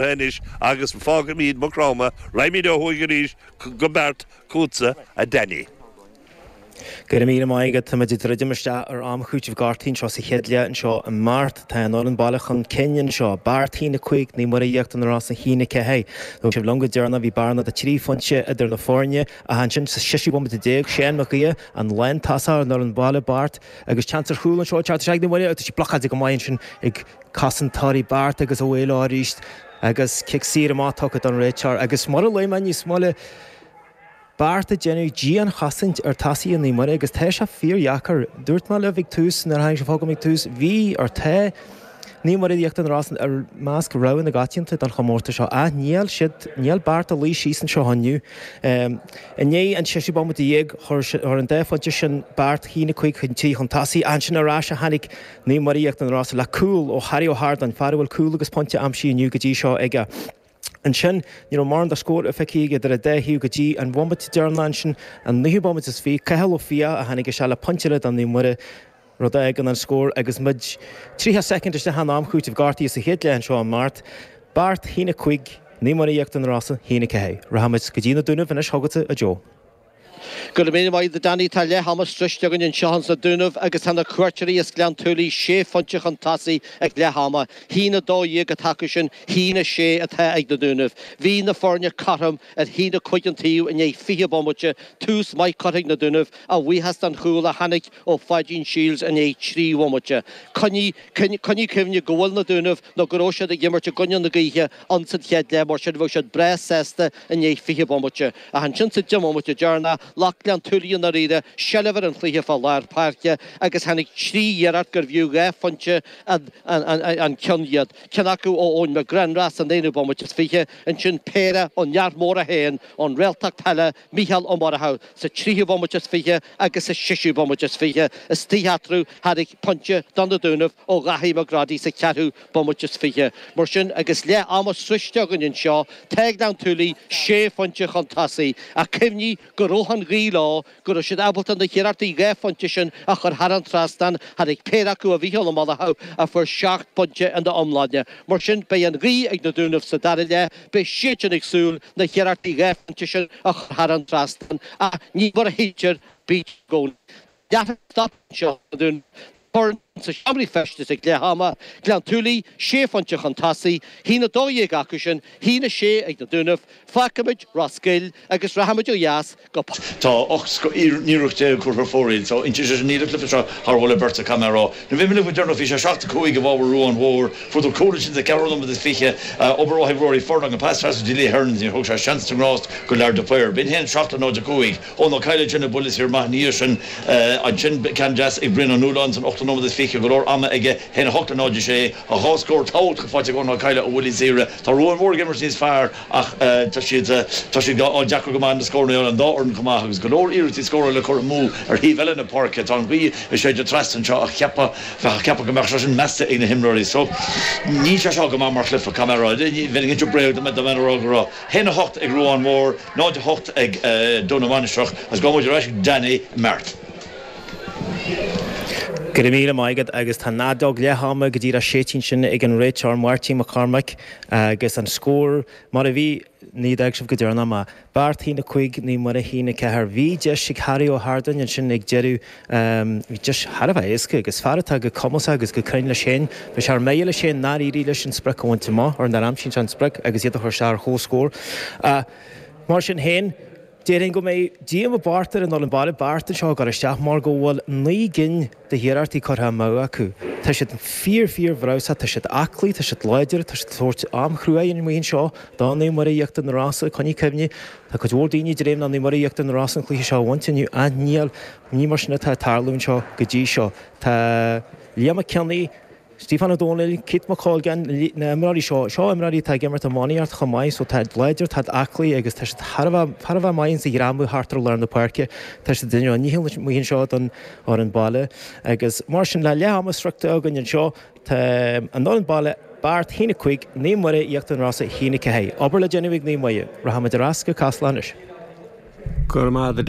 Anois agus fágaimíd Maigh Chromtha raghaimíd ó thuaidh arís go Beart chútsa a Danny. Go raibh míle maith agat. Táimid ag druidim isteach ar am cúitimh gortuithe anseo sa chéad leath anseo i mBeart. Tá an fhoireann baile chun cinn anseo. Beart a haon a cúig, Naomh Muire Íochtar na Rosann a haon a ceathair. Bhí sibh liom go deireanach bhí bearna de trí phointe idir na foirne ach ansin sa seisiú bomaite déag Seán Mac Aodha an lántosaí ar an fhoireann baile Beart agus seans ar chúl anseo ag teacht isteach ag Naomh Muire ach tá sé blocáilte go maith ansin ag cosantóirí Beart agus a mhaoil arís agus cic saor amach tugtha ag an réiteoir agus mar a luaigh mé níos moille Beart ag déanamh dianchosaint ar thosaithe Naomh Muire agus tá sé fíordheacair. Dúirt mé libh ag tús, nuair a tháinig sé chugam ag tús, bhí, ar tá, Naomh Muire Íochtar na Rosann i measc rogha na coitianta don chomórtas seo ach níl siad, níl Beart ag luí síos anseo inniu. I ndiaidh an tseisiú bomaite déag chuir an dá phointe sin Beart a haon a cúig chun trí chun tosaigh. Ansin ar ais a tháinig Naomh Muire Íochtar na Rosann le cúl ó Harry Ó hArdáin, fear a bhfuil cúl agus pointe aimsithe inniu go dtí seo aige. Ansin ní raibh mórán de scór feicthe aige idir an dá thaobh go dtí an bhomaite deireanach ansin, an naoú bomaite is fiche, Cathal Ó Fiaich a tháinig isteach le pointe eile do Naomh Muire, rud a fhágann an scór agus muid tríocha soicind isteach in am cúitimh gortuithe sa chéad leath anseo i mBeart, Beart a haon a cúig, Naomh Muire Íochtar na Rosann a haon a ceathair. Rachaimid go dtí na Dúnaibh anois chugatsa a Joe. Go raibh míle maith agat a Danny tá leath ama sroiste againn anseo ins na Dúnaibh agus tá na cuairteoirí is Gleann tSúilí sé phointe chun tosaigh ag leath ama. A haon a 12 atá acusan a haon a 6 atá ag na Dúnaibh. Bhí na foirne cothrom ar a haon a 5 an taobh i ndiaidh 20 bomaite, tús maith curtha ag na Dúnaibh a bhuíochas don chúl a tháinig ó Pháidín Shiels i ndiaidh trí bhomaite. Coinnigh cuimhne go bhfuil na Dúnaibh nó go raibh siad ag imirt i gcoinne na gaoithe ins an chéad leath mar sin bheadh siad breá sásta i ndiaidh 20 bomaite. Ach ansin sa deich mbomaite deireanach ghlac Gleann tSúilí i ndáiríre seilbh ar an chluiche fá lár páirce agus tháinig trí iarracht gurbh fhiú dhá phointe an ceann iad, ceann acu ó Eoin McGrenra san aonú bomaite is fiche, ansin péire ón fhear mhór é féin ón réaltacht peile Micheál Ó Murchú sa tríthú bomaite is fiche agus sa seisiú bomaite is fiche istigh eatarthu tháinig pointe do na Dúnaibh ó Dhaithí McGroddy sa cheathrú bomaite is fiche. Mar sin, agus leath ama sroiste againn anseo, tá Gleann tSúilí sé phointe chun tosaigh, ach cuimhnigh go raibh an ghaoth leo, go raibh siad ábalta na hiarrachtaí dhá phointe sin a chur thar an trasnán, tháinig péire acu, ó Mhicheál Ó Murchú, a fuair seacht bpointe ina iomláine. Mar sin, beidh an ghaoth ag na Dúnaibh sa dara leath, beidh siadsan ag súil na hiarrachtaí dhá phointe sin a chur thar an trasnán, ach ní mar a shíltear bítear i gcónaí. D'fhéadfadh stop anseo an dá fhoireann sna seomraí feistis ag leath ama, Gleann tSúilí, sé phointe chun tosaigh, a haon 12 acusan, a haon 6 ag na Dúnaibh, fágfaimid Ros Goill agus rachaimid ó dheas go. Tá 18 scoth-iarracht curtha ar fóraoil so inti, sé sin níl an cluiche seo thar mholadh beirte caithfidh mé a rá. Nuair a bhí mé libh go deireanach bhí sé 7, 5 i bhfabhar Ruáin Mhóir, fuaireadar cúl ansin sa cheathrú nóiméad is fiche, obair mhaith ag Rory Furlong, an pas trasna go dtí Lee Hearns níor thug sé seans na ngrást do Lar de Paor. B'in a haon 7 le 0, 5. Eoghan Ó Cadhla ceann ó bhuille saor maith ina dhiaidh sin. Ansin ceann deas ag Brian Ó Nualláin san ochtú nóiméad is fiche, go leor ama aige, a haon 8-0-6, dhá scór tábhachtach faighte ag Eoghan Ó Cadhla ó bhuillí saora. Tá Ruan Mhór ag imirt níos fearr ach tá siad tá siad deacair go maith na scóranna a fháil an dá fhoireann chomh maith agus go leor iarrachtaí scóra le cur amú ar thaobh eile na páirce. Tá an ghaoth ag séideadh trasna anseo ach cheapfá cheapfá go mbeadh sé sin measta ag na himreoirí so níl sé seo go maith mar chluiche, caithfidh mé a rá. Bheinn ag insint bréag dá mbeadh orm a rá go raibh. haon a hocht ag Ruán Mór, náid a hocht ag Dún na Mainistreach agus beidh muid ar ais ag Danny Mart. Go raibh míle maith agat agus tá an fheadóg leath ama go díreach séidte ansin ag an réiteoir Máirtín Mac Cormaic agus an scór mar a bhí, nuair a d'fhág sibh go deireanach mé, Beart a haon 5 Naomh Muire a haon 4. Bhí deis ag Harry Ó hArdáin ansin ag deireadh. Bhí deis thar a bheith éasca agus fear atá go cumasach agus go cruinn leis féin. Bhí sé ar mire leis féin nár éirigh leis an sprioc a bhaint amach, ar nár aimsigh sé an sprioc agus iad a chur isteach ar chomhscór. Mar sin féin, déarfainn go mbeidh díomá i bpáirt ar an fhoireann baile Beart anseo ag gabháil isteach mar go bhfuil naoi gcinn de hiarrachtaí curtha amú acu. Tá siad fíor fíor bhreabhsach, tá siad aclaí, tá siad láidir, tá siad ag tabhairt am chrua ar an mbuíon seo de Naomh Muire Íochtar na Rosa, coinnigh cuimhne, Tá cuid mhór daoine ag dréim le Naomh Muire Íochtar na Rosa an cluiche seo a bhaint inniu ach níl, ní mar sin atá ag tarlú anseo go dtí seo. Tá Liam McKinney, Stephen O'Donnell, Keith McColgan, na himreoirí seo, seo imreoirí atá ag imirt iománaíocht chomh maith so tá siad láidir, tá siad aclaí agus tá siad thar a bheith, thar a bheith maith ins a' ghreamú thart ar lár na páirce. Tá siad ag déanamh a ndícheall anois amuigh anseo don fhoireann baile agus mar sin le leath ama sroichte againn anseo, Tá an fhoireann baile Beart a haon a cúig Naomh Muire Íochtar na Rosa a haon a ceathair obair le déanamh ag Naomh Muire. Rachaimid ar ais go Casla anois. Go raibh maith agat.